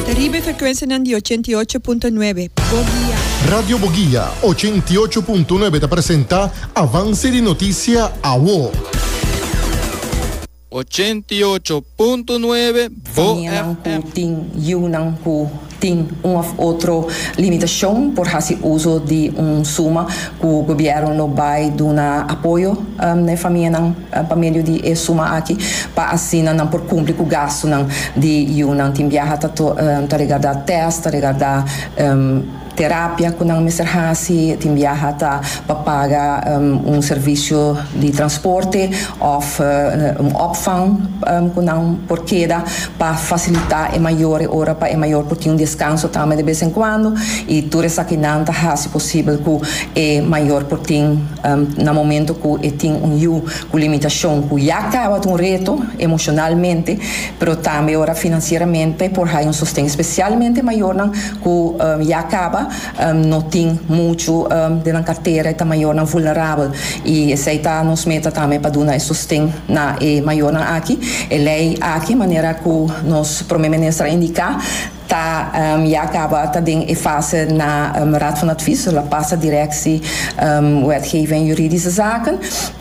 Ta riba e frekuensianan di ochenta i ocho punto nuebe, Boguia. Radio Boguia ochenta i ocho punto nuebe ta presenta Avance di Noticia Awo. Ochenta i ocho punto nuebe, Famianan ku BoFm. tin yunan ku tin un òf otro limitashon por hasi uso di un suma ku gobièrnu lo bai duna apoyo na e famianan. pa medio di e suma aki pa asina nan por kumpli ku gastunan di yunan. Tin biaha ta ta regardá tèst, ta regardá terapia ku nan mester hasi, tin biaha ta pa paga un servisio di transporte òf un òpvang ku nan por keda pa fasilitá e mayor e ora pa e mayor por tin un deskanso tambe de bes en kuando i tur esakinan ta hasi posibel ku e mayor por tin Na momento cu e tin un yu cu limitacion cu ya caba ta un reto, emocionalmente, pero tambe ora financieramente, por hay un sosten, especialmente mayornan cu ya caba no tin mucho den nan cartera, e ta mayornan vulnerabel y esey ta nos meta tambe pa duna e sosten na e mayornan aki. E ley aki, manera cu nos Prome Minister a indica, Ta ya kaba ta den e fase na Raad van Advies, lo a pasa Directie Wetgeving en Juridische Zaken.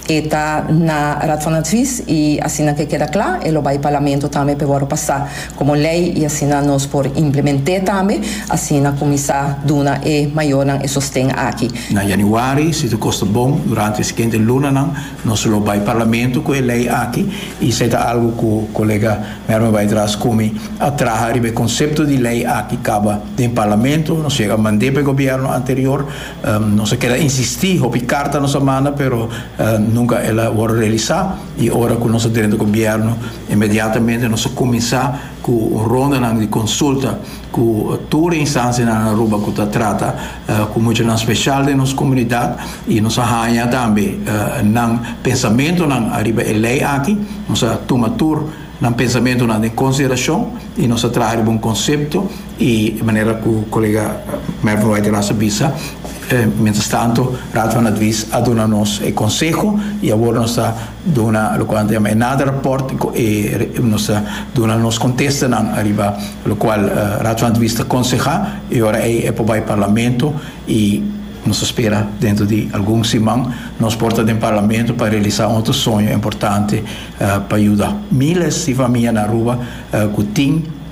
E ta na Raad van Advies y asina ke keda kla e lo bai Parlamento tambe pa e wòrdu pasá komo lei y asina nos por implement'é tambe asina kuminsá duna e mayornan e sosten aki. Na Januari, si ta kosta bon, durante e siguiente lunanan, Nos lo bai Parlamento cu e ley aki y esey ta algo cu colega Merwin bai traha scumi a traha riba e concepto di ley aki caba den Parlamento, nos yega mande pa e Gobierno anterior, nos a keda insisti, hopi carta nos a manda pero nunca el a worde realisa y ora cu nos a drenta Gobierno inmediatamente nos a cuminsa cu un rondanan di consulta. ku tur instansianan Aruba ku ta trata ku muchanan speshal den nos komunidat i nos a haña tambe nan pensamentunan ariba e lei aki nos a tuma tur nan pensamentunan den konsiderashon i nos a traha riba un konsepto i manera ku kolega Mervin White Ras a bisa mientras tanto Raad van Advies a duna nos e konseho i awor nos ta Duna locual nan ta yama e nada rapport y cu e nos a duna nos contestanan ariba locual Raad van Advista conseha y ora ey e por bay Parlamento y nos a spera dentro di algun siman nos por ta den Parlamento pa realisa un otro soño importante pa yuda miles di famia na Aruba cu tin